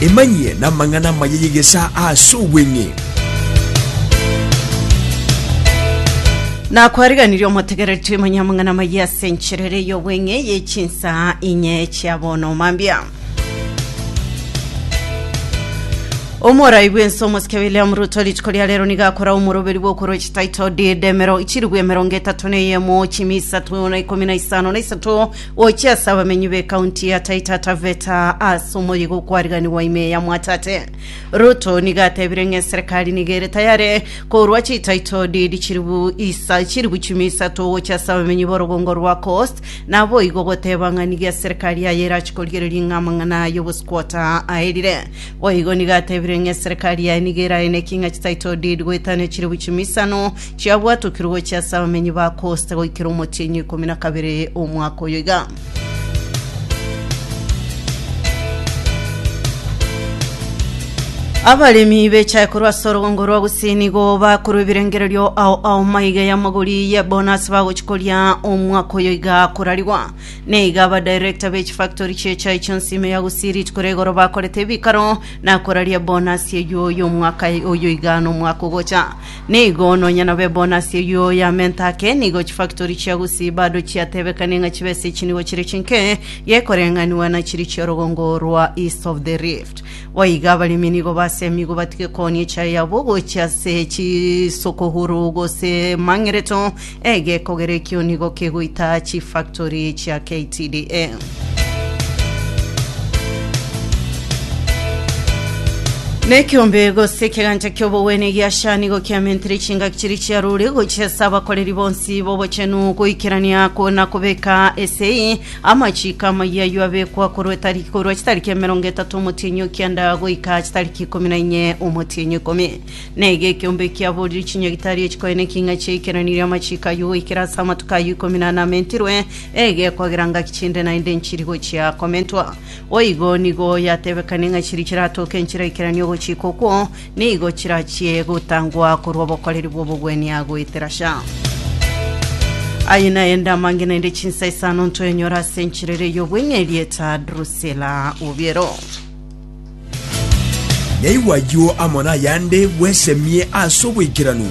Emanyie namang'ana amaya y'egesaa ase obweng'e. Nakwariganirie omotegereti manya amang'ana amaya ase enchera ere y'obweng'e ye chinsaa inye chia bono mambia. Omorai bw'ense omosike William Ruto rituko ria rero nigo akorao omoroberi bw'okoroche title deed emero chirigwe emerongo etato na eyemo chimi isato na ikomi na isano na isato Gochia ase abamenyi b'ecounty ya Taita Taveta ase omoyiga okwariganigwa ime ya Mwatate Ruto nigo atebire ng'a eserekari nigo ere tayare korwa chitaito deed chiribu isa chiribu chimi isato gochia ase abamenyi b'orogongo rwa Coast naboigo goteba ng'a nigo eserekari yaye erachi korigereria ng'a amang'ana aye obosquota aerire boigo nigo atebire ng'a eserekari yaye nigo eraeneki ng'a chitaito deed goetania chiribu chimi isano Chiabwatokire gochia ase abamenyi ba Kosta goikera omotienyi o ikomi na kabere omwaka oyo iga. Abaremi bechae korwa ase orogongo rwa gusii nigo bakorwa ebirengererio ao ao maiga y'amagori ye bonasi bagochi koria omwaka oyo iga korarigwa na iga abadirector be chifactory chi'echai chionsi ime ya gusii rituko ria igoro bakorete ebikaro na koraria ebonasi eyio y'omwaka oyo iga na omwaka ogocha Nigo nonya nabe ebonus eyio y'amenta ake, nigo chifactory chia Gusii bado chiatebekani ng'a chibe ase chinibo chire chinke, gekoreng'aniwa na chiri chi'orogongo rwa East of the Rift. Goiga abaremi nigo basemigwe batige kooni echae yabo gochia ase chisokogoro gose mang'ereto Egekogera ekio nigo kegoita chifactory chia KTDA. Na ekiombe gose ekegancha ki'obogwene gi'Asha nigo kiamentire chingaki chiria chia rore gochiesa abakoreri bonsi b'obochenu goikerania na kobeka esei amachiko amayia ayio abekwa korwa etariki korwa chitariki emerongo etato omotienyi o kianda goika chitariki ikomi na inye omotienyi ikomi na iga ekeombe ekiaborire chinyagitari echikoe na eking'a chia ekerani ria amachiko ayio goikera ase amatuko ayio ikomi na ane amentirwe, ege ekwagera ngaki chinde naende nchiri gochia komentwa. Boigo nigo yatebekane ng'a chiri chiratoke nchire ekerani ogochika okwo, nigo chirachie gotangwa korwa obokoreri bw'obogwenia goetera sha. Aye naende amange naende chinsa isano ntwenyora ase enchiriri ey'obweng'e erieta Drusila Obiero. Naigwa ayio amo nayande bwesemie ase oboikeranu.